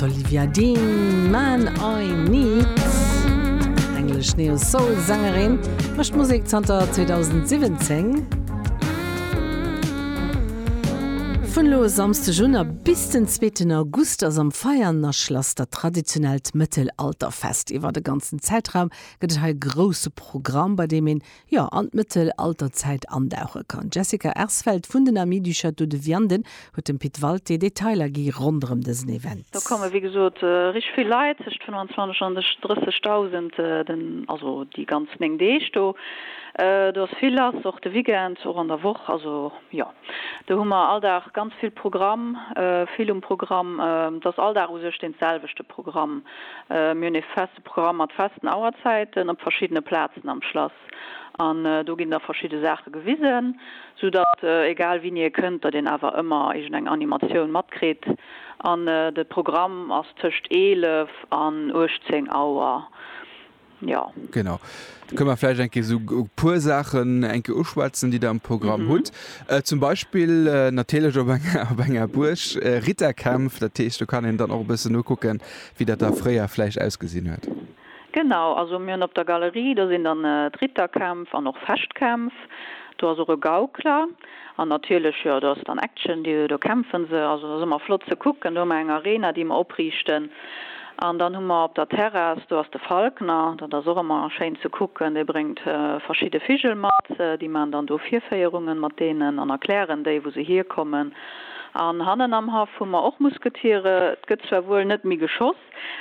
D'Olivia Dean, Man I Need, englesch Neo-Soul-Sängerin, mécht Musek zanter 2017. Vun elo e Samsdeg un a bis den zweeten August ass am Veianerschlass dat traditionellt Mëttelalterfest. Iwwer e ganzen Zäitraum gëtt et hei e grousse Programm, bei deem een jo an d'Mëttelalterzäit andauche kann. D'Jessica Ersfeld vun den Amis du Château de Vianden huet dem Pit Walté Detailer gi ronderëm dësen Event. Do komme wéi gesot richteg vill Leit, tëscht 25 an 30.000, den, also déi ganz 9 Deeg do. Do ass vill lass, och de Weekend, och an der Woch. Also jo, do hu mer all Dag ganz vill Programm, vill um Programm. Et ass all Dag u sech dee selwechte Programm. Mir hunn ee. E Programm mat festen Auerzäiten op verschiddene Plazen am Schlass. An do ginn da verschidde Saache gewisen, sou datt egal wien hie kënnt, datt een awer ëmmer iergendeng Animatioun matkritt. An de Programm ass tëscht 11 an 18 Auer. Jo. Genau. Da kënne mer vläicht eng Kéier esou e puer Saachen eng Kéier uschwätzen, déi Der am Programm hutt. Zum Beispill natierlech op enger Buerg, Ritterkämpf. Dat heescht, do kann een dann och e bëssen nokucken, wéi dat da fréier vläicht ausgesinn huet. Genau, also mir hunn op der Galerie, do sinn dann d'Ritterkämpf an och Fechtkämpf, do ass och e Gaukler an natierlech, jo, do ass dann Action, do kämpfe se. Also dat ass ëmmer flott ze kucken. Do hu mer eng Arena, déi mer opriichten an dann hu mer op der Terrass, do ass de Falkner, dat ass och ëmmer schéin ze kucken, dee bréngt verschidde Vigel mat, déi maachen dann do Virféierungen mat deenen an erklären déi, wou se hierkommen. An hannen am Haff hu mer och Musketiere. Et gëtt zwar wuel net méi geschoss,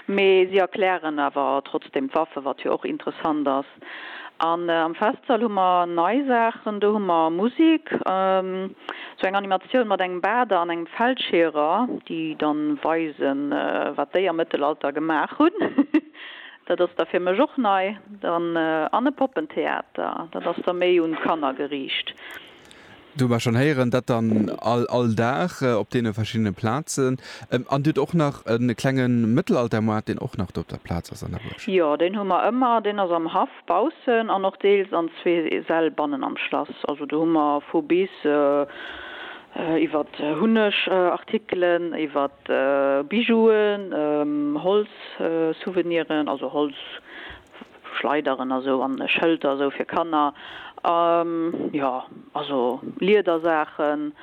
mee si erklären awer trotzdeem d'Waffe, wat jo och interessant ass. An am Festsall hu mer nei Saachen, do hu mer Musik, sou eng Animatioun mat engem Bader an engem Feldscheerer, déi da weisen, wat déi am Mëttelalter gemaach hunn. Dat ass da fir mech och nei. Dann an e Poppentheater, dat ass da méi un d'Kanner geriicht. Do mer schonn héieren dat dann all all Dag op deene verschiddene Plazen. An Dir hutt och nach e klenge Mëttelaltermoart, deen och nach do op der Plaz ass an der Buerg? Jo, deen hu mer ëmmer. Deen ass am Haff baussen an och deels an zwee Säll bannen am Schlass. Also do hu mer vu bis, iwwert Hunnegartikelen, iwwert Bijouen, Holzsouveniren, also Holz Schleideren a sou an Schëlter a sou fir Kanner. Jo, also Liedersaachen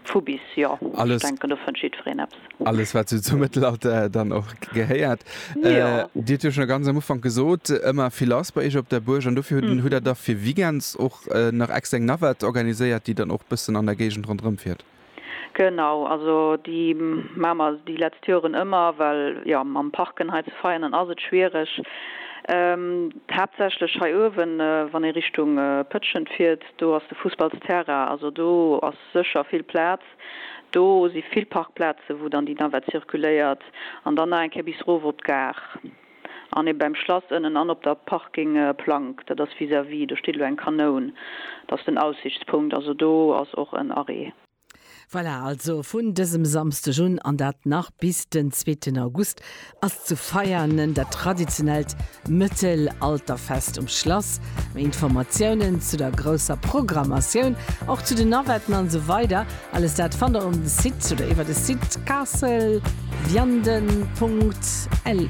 vu bis, jo. Ech denken, do fënnt jiddwereen eppes. Alles, wat sou zum Mëttelalter dann och gehéiert. Dir hutt jo schonn ganz am Ufank gesot, ëmmer vill lass bei iech op der Buerg. An dofir hutt Der da fir Weekends och nach extra eng Navette organiséiert, déi dann och e bëssen an der Géigend ronderëmfiert? Genau, also déi maache mer déi letzt Joren ëmmer, well jo mam Parken hei ze Veianen ass et schwiereg. Haaptsächlech hei uewen, wann ee Richtung Pëtschent fiert, do ass de Fussballsterrain, also do ass sécher vill Plaz. Do si vill Parkplaze wou dann déi Navette zirkuléiert an dann nach eng Kéier bis erof op d'Gare. An ee beim Schlass ënnen an op der Parking Plank, dat ass vis-à-vis, do steet elo eng Kanoun, dat ass den Aussichtspunkt, also do ass och en Arrêt. Voilà, also vun dësem Samsdeg un, an dat nach bis den zweeten August, ass zu Veianen dat traditionellt Mëttelalterfest um Schlass. Méi Informatiounen zu der grousser Programmatioun, och zu den Navetten an esou weider Alles dat fannt der um Site oder iwwer de Site castle-vianden.lu.